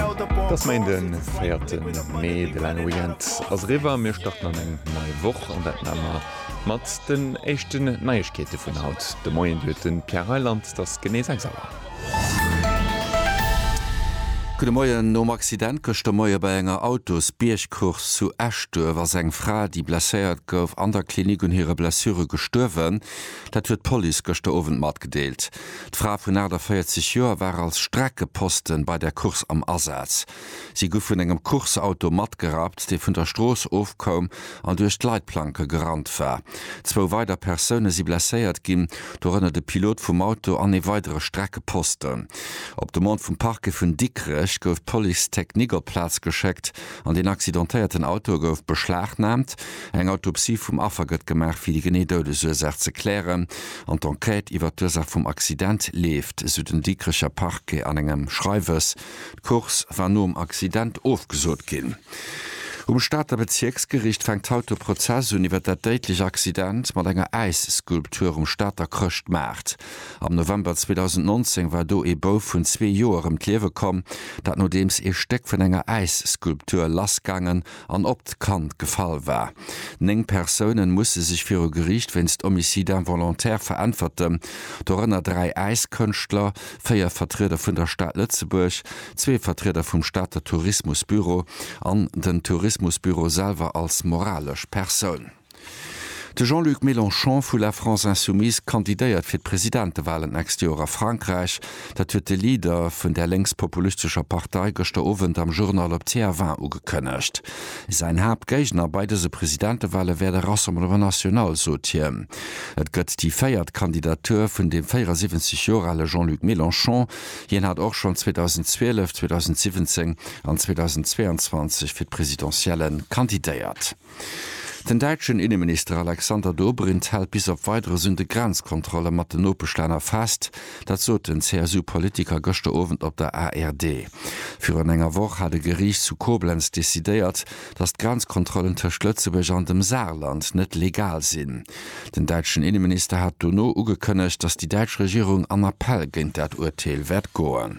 Et ass Méinden, den 4 Mee. De laange Weekend ass eriwwer a mir starten an eng nei Woch. An dat maache mer mat den éischten Neiegkeete vun haut de Moien. Dir huet de Pierre Reyland. Et ass genee 6 Auer. Gudde Moien. Nom Accident gëschter Moie bei enger Autosbiergcourse zu Eschduerf ass eng Fra, déi blesséiert gouf, an der Klinik un hire Blessure gestuerwen. Dat huet d'Police gëschter Owend matgedeelt. D'Frae vun 48 Joer ware als Streckeposten bei der Course am Asaz. Si gu vun engem Course-Auto matgerappt, dee vun der Strooss ofkoum an duerch d'Leitplanke gerannt war. Zwou weider Persoune si blesséiert ginn, dorënner de Pilot vum Auto an ee weidere Streckeposten. Op Demande vum Parquet vun Dikrech gouf d'Police technique op d'Plaz geschéckt an den accidentéierten Auto gouf beschlagnaamt. Eng Autopsie vum Affer gëtt gemaach, fir déi genee Doudesursaach ze klären an d'Enquête iwwer d'Ursaach vum Accident leeft, esou den Dikrecher Parquet an engem Schreiwes. D'Course war nom Accident ofgesot ginn. Um Stater Bezierksgeriicht fänkt haut de Prozess un iwwer dat déidlech Accident mat enger Äisskulptur um Stater Chrëschtmaart. Am November 2019 war do ee Bouf vun zwee Joer ëm d'Liewe komm, dat nodeems ee Stéck vun enger Äisskulptur lassgaangen an op d'Kand gefall war. Néng Persoune musse sech viru Geriicht wéinst Homicide involontaire veräntwerten, dorënner dräi Äiskënschtler, véier Vertrieder vun der Stad Lëtzebuerg, zwee Vertrieder vum Stater Tourismusbüro an den Tourismusbüro selwer als moralesch Persoun. De Jean-Luc Mélenchon vu La France Insoumise kandidéiert fir d'Presidentewalen d'nächst Joer a Frankräich. Dat huet de Leader vun där lénks-populistescher Partei gëschter Owend am Journal op TF1 ugekënnegt. Säin Haaptgéigner bei dëse Presidentewale wär de Rassemblement National, sot hien. Et gëtt déi véiert Kandidatur vun dem 74 Joer ale Jean-Luc Mélenchon. Hien hat och schonn 2012, 2017 an 2022 fir d'Presidentielle kandidéiert. Den däitschen Inneminister Alexander Dobrindt hält bis op Weideres un de Grenzkontrolle mat den Nopeschlänner fest. Dat sot den CSU-Politiker gëschter Owend op der ARD. Virun enger Woch hat e Geriicht zu Koblenz decidéiert, datt d'Grenzkontrollen tëscht Lëtzebuerg an dem Saarland net legal sinn. Den däitschen Inneminister hat dono ugekënnegt, datt déi däitsch Regierung an Appell géint dat Urteel wäert goen.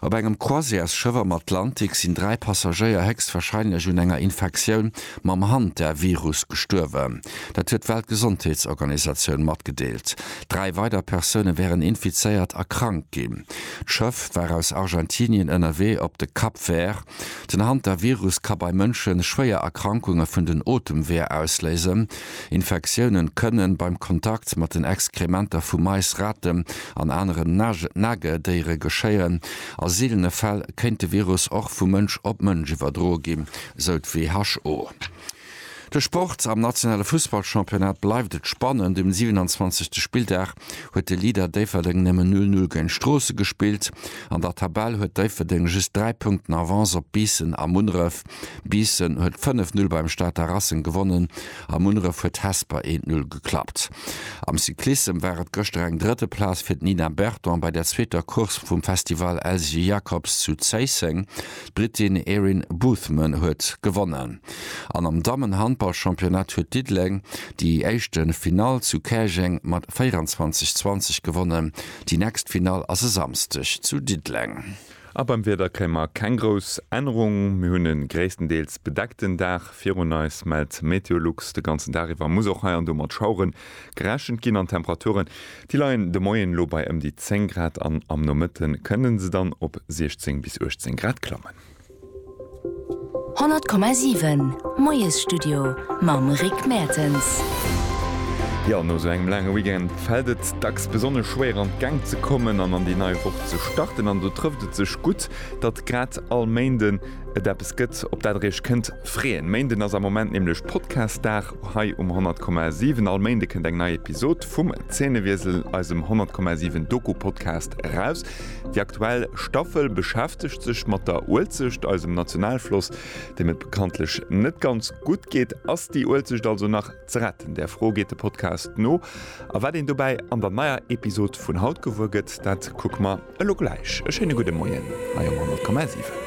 Op engem Croisièresschëff am Atlantik sinn dräi Passagéier héchstwarscheinlech un enger Infektioun mam Hantavirus gestuerwen. Dat huet d'Weltgesondheetsorganisatioun matgedeelt. Dräi weider Persoune wären infizéiert a krank ginn. D'Schëff war aus Argentinien ënnerwee op de Cap Vert. Den Hantavirus ka bei Mënsche schwéier Erkrankunge vun den Otemweeër ausléisen. Infektioune kënnen beim Kontakt mat den Exkrementer vu Mais, Raten an aneren Nagedéiere geschéien. A seelene Fäll kéint de Virus och vu Mënsch op Mënsch iwwerdroe ginn, sou d'WHO. De Sport, Am nationale Fussballchampionnat bleift et spannend. Um 27. Spilldag huet de Leader Déifferdeng nëmmen 0, 0 géint Stroossen gespillt. An der Tabell huet Déifferdeng just 3 Punkten Avance op Biissen a Munneref. Biissen huet 5, 0 beim Stater Racing gewonnen a Munneref huet Hesper 1, 0 geklappt. Am Cyclissem war et gëschter eng drëtte Plaz fir d'Nina Berton bei der zweeter Course vum Festival Elsy Jacobs zu Zéisseng. D'Britin Erin Boothman huet gewonnen. An am Dammen-Handball-Championnat huet Diddeleng déi éischte Finall zu Käerjeng mat 24, 20 gewonnen. Déi nächst Finall ass e Samsdeg zu Diddeleng. A beim Wieder kréie mer keng grouss Ännerung. Mir hunn e gréisstendeels bedeckten Dag virun eis, mellt Meteolux. De ganzen Dag iwwer muss och hei an do mat Schauere gerechent ginn an d'Temperature Déi leien de Moien elo bei ëm déi 10 Grad an am Nomëtte kënne se dann op 16 bis 18 Grad klammen. 100,7 Moiesstudio mam Rick Mertens. Jo, no esou engem laange Weekend fält et dacks besonnesch schwéier an d'Gäng ze kommen an an déi nei Woch ze starten. An do trëfft et sech gutt, datt grad all Méinden et eppes gëtt, op dat der iech kënnt freeën. Méinden ass am Moment nämlech Podcast-Dag. Hei um 100,7 all Méinde kënnt eng nei Episod vum Zeenewiesel, eisem 100,7 Doku-Podcast eraus. Déi aktuell Staffel beschäftegt sech mat der Uelzecht, eisem Nationalfloss, deem et bekanntlech net ganz gutt geet. Ass déi Uelzecht also nach ze retten? Där Fro geet de Podcast no. A wat een dobäi an der neier Episod vun haut gewuer gëtt, dat kucke mer elo gläich. E schéine gudde Moien hei um 100,7.